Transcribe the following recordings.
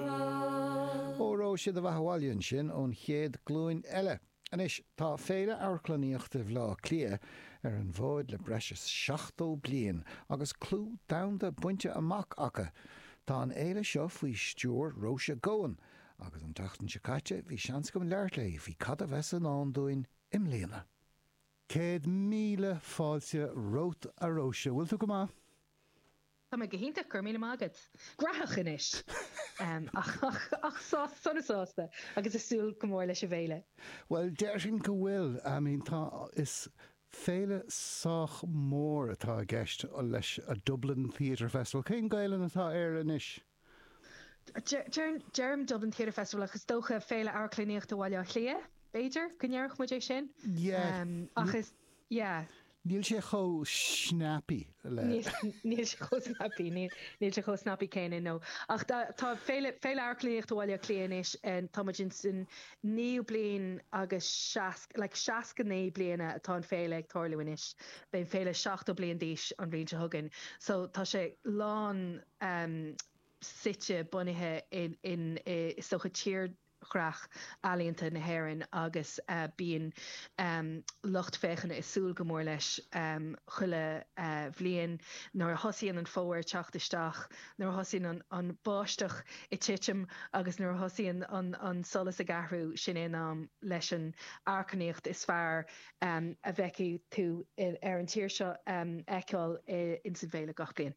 Ó raibh siad maith, bhuel ansin ón chéad glúin eile! Anois, tá Féile Amharclannaíochta Bhaile Átha Cliath ar an bhfód le breis is 70 bliain agus clú domhanda bainte amach acu. Tá an fhéile seo faoi stiúir Róise Goan agus an tseachtain seo caite bhí seans agam labhairt léi faoi cad a bheas i ndán dúinn i mbliana. Céad míle fáilte romhat a Róise, bhfuil tú go maith? Tá mé go hiontach, go raibh míle maith agat. Gnóthach anois! Ach sona sásta agus ag súil go mór leis an bhféile. Bhuel, déarfainn go bhfuil. I mean, tá, is féile sách mór atá i gceist leis, a Dublin Theatre Festival. Cén Ghaelainn atá air anois? Deirim Dublin Theatre Festival ach is dócha Féile Amharclannaíochta Bhaile Átha Cliath, b'fhéidir, go ndéarfadh muid é sin. Ach is, yeah. Níl sé chomh snappy le. Níl sé chomh snappy, níl sé chomh snappy céanna, no. Ach tá Féile Amharclannaíochta Bhaile Átha Cliath anois, tá muid ins an naoú bliain agus seasc, like seasca naoi bliana atá an Féile ag tarlú anois, beidh an Féile seachtó bliain d'aois an bhliain seo chugainn, so tá sé lán, suite, bunaithe in, is dócha, tírdhreach ealaíonta na hÉireann agus bíonn lucht féachana ag súil go mór leis chuile bhliain. Nuair a thosaíonn an fómhar ag teacht isteach, nuair a thosaíonn an bháisteach ag titim agus nuair a thosaíonn an solas ag athrú, sin é an t-am leis an amharclannaíocht is fearr a fheicfidh tú ar an tír seo a fheiceáil ins an bhféile gach bliain.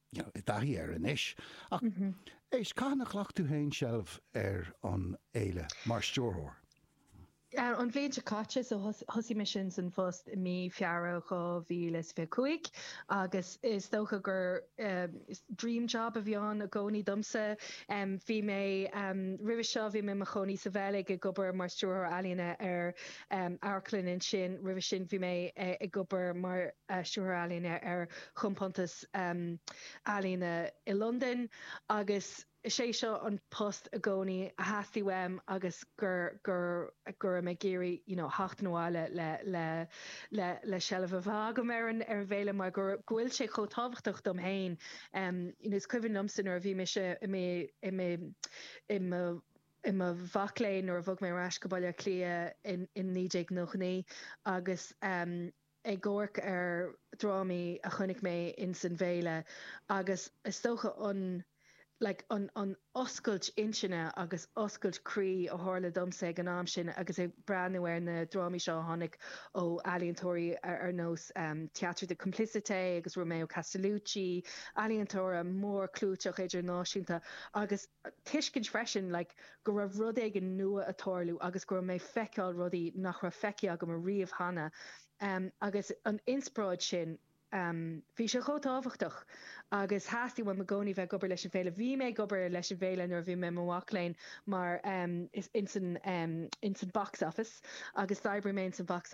I dtaithí air anois, ach éist, cathain a ghlac tú féin seilbh ar an fhéile mar stiúrthóir? An bhliain seo caite, so thosaigh mé ins an phost i mí Feabhra 2025 agus is dócha gur dream job a bhí ann i gcónaí domsa. Bhí mé, roimhe seo, bhí mé i mo chónaí sa Bheilg ag obair mar stiúrthóir ealaíne ar amharclann ansin, roimhe sin bhí mé ag obair mar stiúrthóir ealaíne ar chompántas, Em ealaíne i Londain agus is é seo an post i gcónaí a theastaigh uaim agus go raibh mé ag iarraidh, you know, theacht abhaile le seilbh a bheith agam ar an bhféile mar go bhfuil sé chomh tábhachtach dom féin. Is cuimhin liomsa nuair a bhí mise i mo mhac léinn nuair a bhog mé ar ais go Baile Átha Cliath in 1999 agus ag amharc ar dhrámaí a chonaic mé ins an bhféile agus is dócha an like an an oscailt intinne agus oscailt croí a tharla domsa ag an am sin agus ag breathnú ar na drámaí seo a tháinig ó ealaíontóirí ar nós Theatre de Complicité agus Romeo Castellucci, ealaíontóirí móra clúiteacha idirnáisiúnta agus. tuiscint freisin like go raibh rud éigin nua a' tarlú agus go raibh mé a' feiceáil rudaí nach raibh feicthe agam a riamh cheana ehm agus an inspioráid sin ehm bhí sé chomh tábhachtach agus theastaigh uaim i gcónaí bheith ag obair leis an bhféile, bhí mé ag obair leis an bhféile nuair a bhí mé i mo mhac léinn mar ehm ins an ehm ins an box office agus d'oibrigh mé ins an box